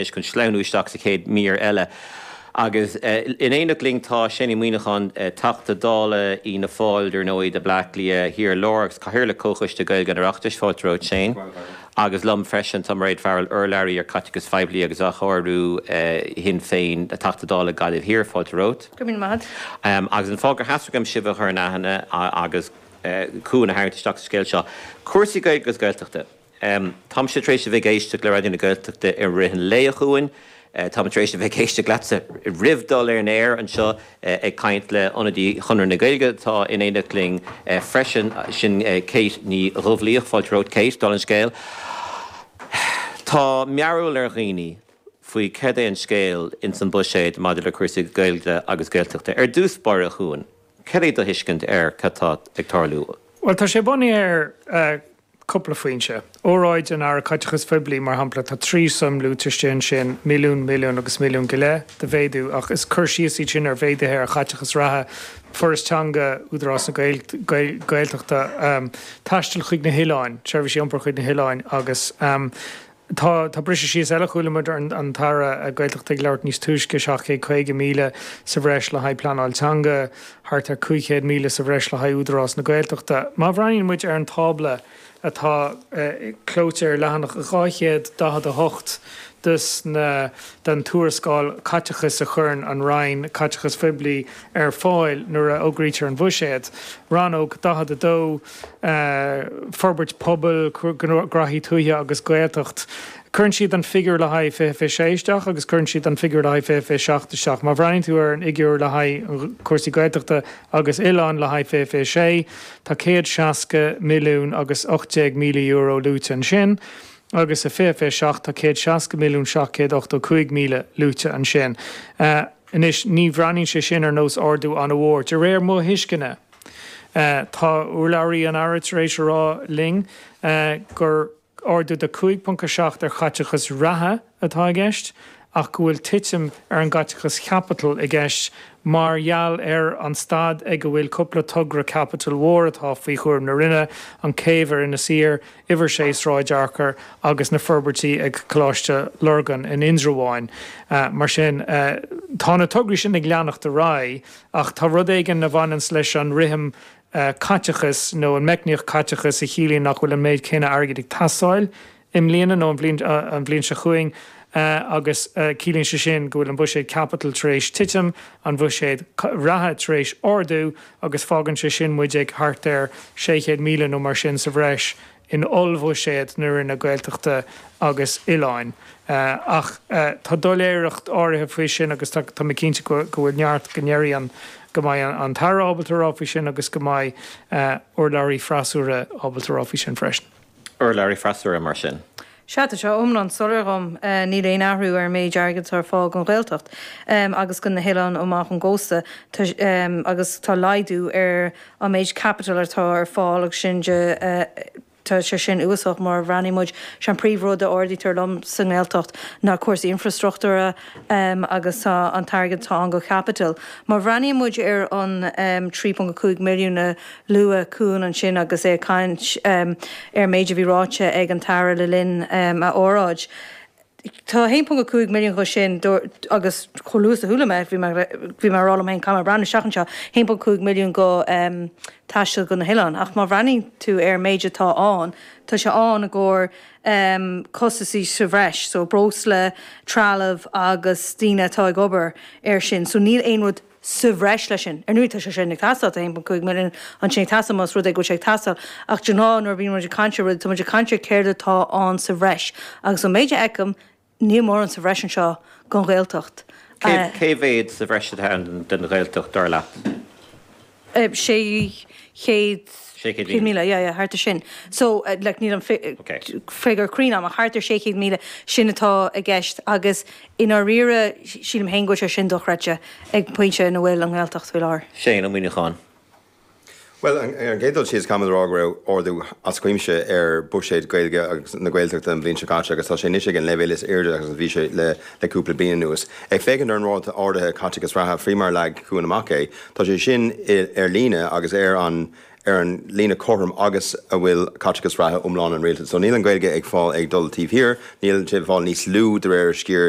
leis chun sleamhnú isteach sa chéad mhír eile. Agus in éineacht linn tá Shane Moynihan, Teachta Dála Fhianna Fáil ar ndóigh do Bhleá Cliath Thiar Láir agus Cathaoirleach Chomhchoiste Gaeilge an Oireachtais. Fáilte romhat Shane. Agus liom freisin tá Mairéad Farrell, Urlabhraí ar Caiteachas Phoiblí agus Athchóiriú, Shinn Féin, Teachta Dála Gaillimh Thiar. Fáilte romhat. Go raibh míle maith agat. Agus an fáth gur theastaigh uaim sibh a chur in aithne agus Cuan a tharraingt isteach sa scéal seo, cúrsaí Gaeilge agus Gaeltachta. Um táimse tar éis a bheith ag éisteacht le Raidió na Gaeltachta i rith an lae a Chuain. Táim tar éis a bheith ag éisteacht leatsa roimh dul ar an aer anseo ag caint le ionadaí Chonradh na Gaeilge atá in éineacht linn freisin, sin Kate Ní Dhubhlaoich. Fáilte romhat Kate, dála an scéil. Tá mearbhall ar dhaoine faoi céard é an scéal ins an buiséad maidir le cúrsaí Gaeilge agus Gaeltachta. Ar dtús báire a Chuain, céard é do thuiscint ar cad tá ag tarlú? Bhuel tá sé bunaithe ar cúpla foinse. Óráid an Aire Caiteachais Phoiblí, mar shampla, tá trí suim luaite istigh ansin, milliún, milliún agus milliún go leith de mhéadú, ach is cur síos iad sin ar mhéaduithe ar chaiteachas reatha, Foras Teanga, Údarás na Gaeltachta, taisteal chuig na hoileáin, seirbhísí iompair chuig na hoileáin agus. Tá briseadh síos eile, chuala muid an tAire Gaeltachta ag labhairt níos túisce, 750,000 sa bhreis le haghaidh pleanáil teanga, thart ar 500,000 sa bhreis le haghaidh Údarás na Gaeltachta. Má bhreathnaíonn muid ar an tábla atá clóite ar leathanach 248 den tuarascáil caiteachais a chuireann an Roinn Caiteachais Phoiblí ar fáil nuair a fhógraítear an Bhuiséad, Rannóg 42, Forbairt Pobail, Gnóthaí Tuaithe agus Gaeltacht. Cuireann siad an figiúr le haghaidh 2026 isteach agus cuireann siad an figiúr le haghaidh 2027 isteach. Má bhreathnaíonn tú ar an fhigiúr le haghaidh cúrsaí Gaeltachta agus Oileán le haghaidh 2026, tá €160,018,000 luaite ansin agus i 2027 tá €160,785,000 luaite ansin. Anois, ní bhreathnaíonn sé sin ar nós ardú an-mhór, de réir mo thuisceana. Tá urlabhraí an Aire tar éis a rá linn gur ardú de 5.7 ar chaiteachas reatha atá i gceist ach go bhfuil titim ar an gcaiteachas chaipitil i gceist mar gheall ar an staid ag a bhfuil cúpla togra caipitil mhór atá faoi chúram na Roinne, an chéibh ar Inis Oírr, Uimhir 6 Sráid Fhearchair agus na forbairtí ag Coláiste Lurgan in Indreabháin. Mar sin tá na tograí sin ag leanacht ar aghaidh. Ach tá rud éigin a bhaineanns leis an rithim caiteachais nó an meicníocht caiteachais a chiallaíonn nach bhfuil an méid céanna airgid ag teastáil i mbliana nó an bhliain seo chugainn agus ciallaíonn sé sin go bhfuil an bhuiséad caipitil tar éis titim, an bhuiséad reatha tar éis ardú agus fágann sé sin muid ag thart ar 600,000 nó mar sin sa bhreis in ollbhuiséad na Roinne Gaeltachta agus Oileáin. Ach tá doiléireacht áirithe faoi sin agus tá mé cinnte go bhfuil neart go ndeirfidh go mbeidh an tAire ábalta a rá faoi sin agus go mbeidh urlabhraí freasúra ábalta a rá faoi sin freisin. urlabhraí freasúra mar sin. Sea, tá sé iomlán soiléir dhom. Níl aon athrú ar an méid airgid atá ar fáil don Ghaeltacht agus do na hoileáin amach ón gcósta agus tá laghdú ar an méid caipitil atá ar fáil agus sin de, tá sé sin uafásach má bhreathnaíonn muid, sé an príomh rud a ardaítear liom sa nGaeltacht ná cúrsaí infrastruchtúra agus tá an t-airgead atá ann go caipitil. Má bhreathnaíonn muid ar an 3.5 milliún a luaigh Cuan ansin agus é ag caint ar an méid a bhí ráite ag an tAire le linn a óráid. Tá 1.5 milliún dho sin, agus chomh luath is a chuala mé, bhí mé bhí mé a rá liom féin, caithfidh mé breathnú isteach anseo, 1.5 milliún dho taisteal dho na hoileáin. Ach má bhreathnaíonn tú ar an méid atá ann, tá sé ann i gcomhair costasaí sa bhreis, so breosla, trealamh agus daoine atá ag obair ar sin. So níl aon rud. sa bhreis leis sin. Ar ndóigh tá sé sin ag teastáil, tá 1.5 milliún ansin ag teastáil más rud é go bhfuil sé ag teastáil, ach de ghnáth nuair a bhíonn muid ag caint ar rudaí tá muid ag caint ar céard atá ann sa bhreis agus ón méid a fheicim níl mórán sa bhreis anseo gon Ghaeltacht. Cé mhéad sa bhreis atá ann den Ghaeltacht dar leat? 600 600,000 yeah yeah thart ar sin. So like níl an figiúr cruinn agam ach thart ar 600,000 sin atá i gceist agus I ndáiríre, sílim féin go bhfuil sé sin dochreidte ag pointe ina bhfuil an Ghaeltacht faoi láthair. Shane Moynihan. Bhuel, ar an gcéad dul síos, caithfimid a rá go raibh ardú as cuimse ar bhuiséad Gaeilge agus na Gaeltachta an bhliain seo caite agus tá sé anois ag an leibhéal is airde agus a bhí sé le cúpla bliain anuas. Ag féachaint ar an ráta ardaithe caiteachais reatha, faoi mar a leag Cuan amach é, tá sé sin ar líne agus ar an líne cothrom agus a bhfuil caiteachas reatha iomlán an Rialtais. So níl an Ghaeilge ag fáil ag dul taobh thiar, níl sé ag fáil níos lú de réir a sciar